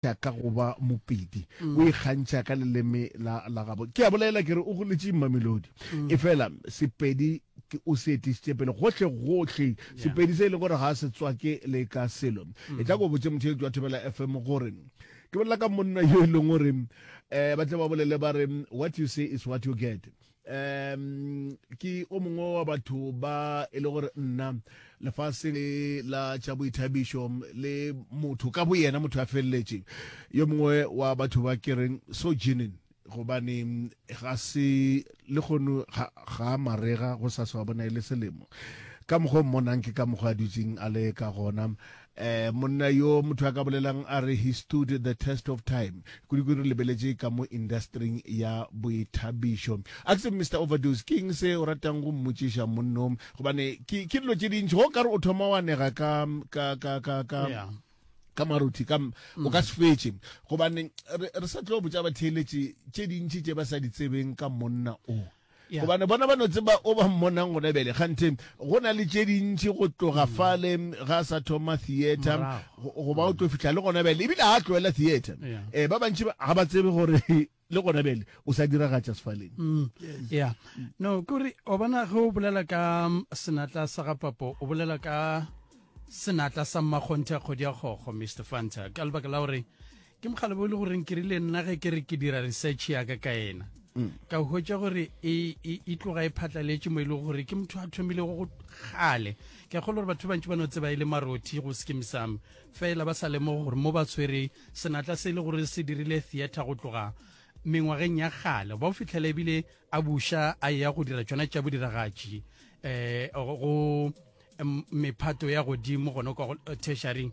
ikgantšha ka go ba mopedi o ikgantšha ka leleme la la gabo ke a bolela ke re o goletše mamelodi efela sepedi ke o se etišitše pele gohle gohle sepedi se e le gore ga se tswake le ka selo e tla ko botse motheetši wa thobela fm gore ke bolela ka monna yo e leng gore um ba tle ba bolele ba re what you say is what you get um ke o mongwe wa batho ba e le gore nna lefase le la tša boithabišo le motho ka bo yena motho a feleletše yo mongwe wa batho ba ke reng so jenin gobane ga se le kgono ga marega go sa swa bona e le selemo ka mokgwa o mmonang ke ka mokgwa a dutseng a le ka gona Eh, monna yo motho a ka bolelang a re he stood the test of time kudu re lebeletše ka mo industring ya boithabišo axe mr overdose ke eng se o ratang go mmotšiša monno gobane ke ke dilo tše dintši go ka re o thoma wa nega ka ka ka ka ka yeah ka maruthi ka mm. o ka se fetše gobane re sa tlo botša batheeletše tše dintši tše ba sa di tsebeng ka monna o Yeah. gobane bona ba no tseba o ba mmonang gona bjale gante go na le tše dintši go tloga mm. fale ga a sa thoma theatre go ba o tlo fihla le gona bjale ebile ga a tloela theatre um eh, ba bantši ga ba tsebe gore le gona bjale o sa diragatša sefaleng mm. ya no kore o bona ge o bolela ka mm, senatla sa ga papo o bolela ka senatla sa mmakgonthe kgodi ya kgokgo mr fanta ka lebaka la gore ke mokgale bo e le goreng ke rile nna ge ke re ke dira research yaka ka ena mm. ka hwetša gore e, e, e tloga e phatlaletše mo e lego gore ke motho a thomilego go kgale ke kgolo gore batho bantši ba no tseba e le marothi go skim sam fela ba sa lemogo gore mo ba tshwere senatla se e le gore se dirile theatre go tloga mengwageng ya kgale ba o fitlhela ebile a buša a ya go dira tsona tša bodiragatši um go mephato ya godimo gone kwa eh, tertiaring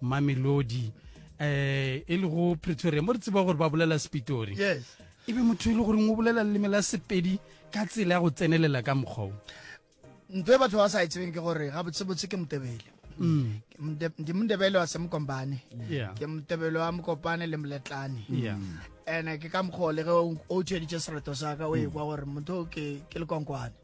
mamelodi eh e le go pretoria mo re tseba gore ba bolela sepitori yes e be motho e le goreng o bolela leleme la sepedi ka tsela ya go tsenelela ka mokgwao ntho e batho ba sa e tsebeng ke gore ga botsebotse ke motebele mm. ndi motebele wa semokombane ke motebele wa mokopane le moletlane ene ke ka mokgwa le ge o tsheditše sereto sa ka o ekwa gore motho ke lekonkwane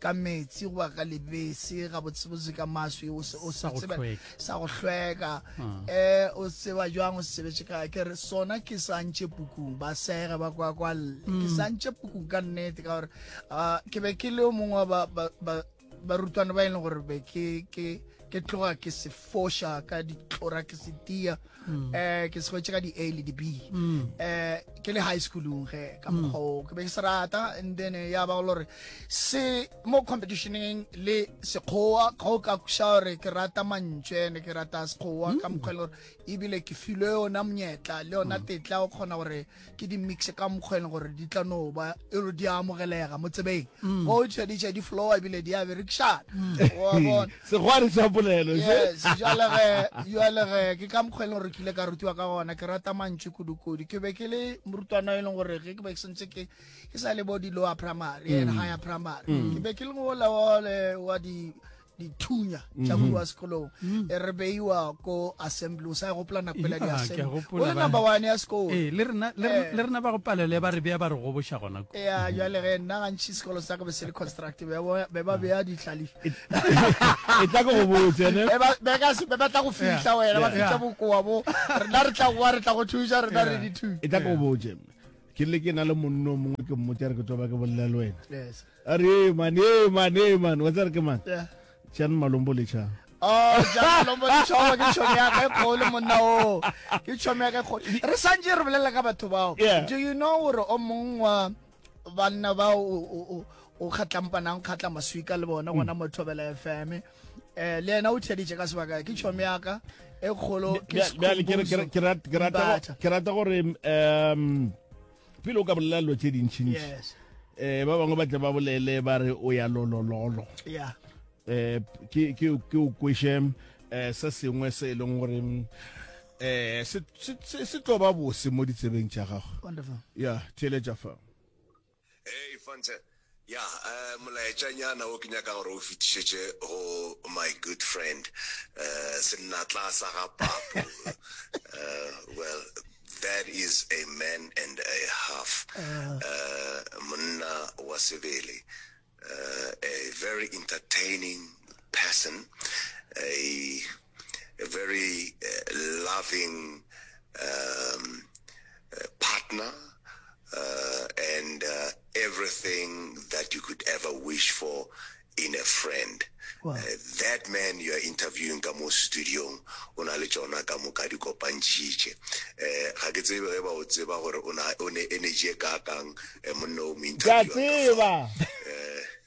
ka meetse goba ka lebese gabotsebotse ka maswi o se o se tseba sa go hlweka um o tseba jwang o sebetse ka ke re sona ke santše pukung ba sega ba kwa kwa ke santše pukung ka nnete ka gore ke be ke le o mongwe ba ba ba rutwana ba e leng gore be ke ke ke tloga ke se fosha ka ditlora ke se tia um ke segwetse ka di-a le di-b um ke le high schoolong ge ka mm. mokgwao ke be ke se rata and then eh, ya ba go gore se mo competitioneng le sekgowa ga o ka kuša gore ke rata mantswe ne ke rata sekgowa ka mm. mokgwa e le gore ebile ke filwe yona monyetla le yona mm. tetla o kgona gore ke di mixe ka mokgwa e leng gore di tla no ba e re di a amogelega mo tsebeng mm. go tšha di tšha di flowa ebile di a berekšana mm. segwari sa polelo jalege ke ka mokgwa e leng gore ke ile ka rutiwa ka gona ke rata mantši kudu-kudu ke be ke le morutwana e leng gore ge ke be ke sentse ke ke sa le bo di-lower primary and mm. higher primary ke be ke le ngolawole wa di dithunya tša mm-hmm. wa sekolong mm. e re beiwa ko assembly o sa gopola nako pela di-assembly o le number one ya sekolo eh, le rena eh. ba go palele ba re bea ba re goboša gona ko ya mm-hmm. jale ge nna gantšhi sekolo sa ka be se le construct be ba bea ditlhalifi e tla ko go botsene be ba tla go fihla wena ba fihla bokoa bo rena re tla goa re tla go thuša rena re dithunya e tla ko go botse ke le ke na le monno mongwe ke mmote re ke toba ke bolela le wena A re ee man, ee man, ee man, wa tsere ke man? Yeah. Jan Malombo le Cha. Oh, Jan Malombo le Cha, ke tšhomi ya ge kgolo monna o. Ke tšhomi ya ge kgolo. Re santse re bolela ka batho bao. Yeah. Do you know gore o mong wa banna ba o o kgatlampanang kgatla maswika le bona gona mm. mo thobela FM eh le yena o theditše ka sebaka ke tšhomi ya ka e kgolo ke ke rata gore um pele o ka bolela dilo tse dintšhintši yes eh ba bangwe ba tle ba bolele ba re o ya lolololo yeah eh ke ke ke o kweshe eh se sengwe se e leng gore eh se se se tlo ba bose mo ditsebeng tša gago wonderful yeah theletša fa hey fanta Ya, molaetšanyana wo ke nyaka gore o fetišetše go my good friend sennatlaa sa ga Papo, well that is a man and a half, monna wa sebele, a very entertaining person, a a very loving um, partner uh, and uh, everything that you could ever wish for in a friend. Wow. Uh, that man you are interviewing ka mo studiong o na le tsona ka moka di kopantšhitše um ga ke tsebe ge ba o tseba gore o ne energy e kakang um eh, monna o mo interviewang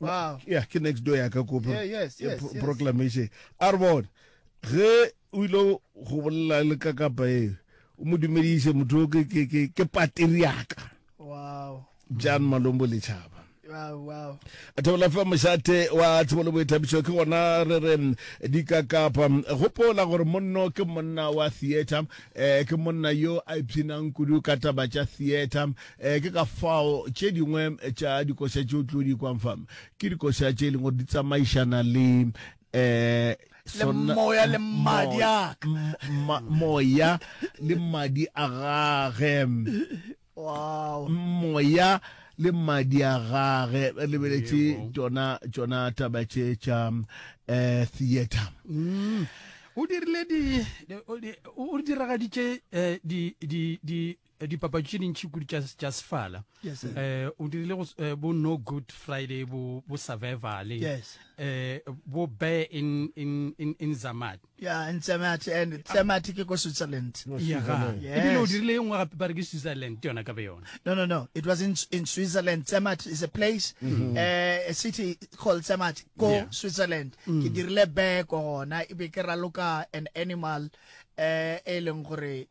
wow yeah ke next door ya ka ko yeah, yes, yes, pro yes. proclamation a re bone ge o ile go bolela le ka kapa e o mo dumediše motho ke ke ke ke pateri ya ka wow jan malombo le chaba thobela fa mošate wa tshebo le boithabišo ke gona re re mm, dikakapa mm, gopola gore monno ke monna wa theatre um ke monna yo a ipshinang kudu ka taba tša theatre um Ee, ke ka fao tše dingwe tša dikoša tše o tlo di kwang fa ke dikoša tše e leng gore di tsamaišana le um le moya le mmadi a moya le mmadi a gage wow moya le mmadi a gage lebeletše tšona tšona taba tše tša um eh, theatre mm. o dirile di o diragaditše eh, di di di Eh, dipapatši tše dintšhi kudu tša sefala yes, um eh, o dirile eh, bo no good friday bo, bo survival yes. um bo bear in, in, in, in zamat yeah, in zamat and zamat ke ko switzerland ebile o dirile e nngwe gape ba re ke switzerland yona ka be yona no no no it was in, in switzerland zamat is a place mm -hmm. uh, a city called zamat ko yeah. switzerland mm. ke dirile bear ko gona ebe ke raloka an animal um e leng gore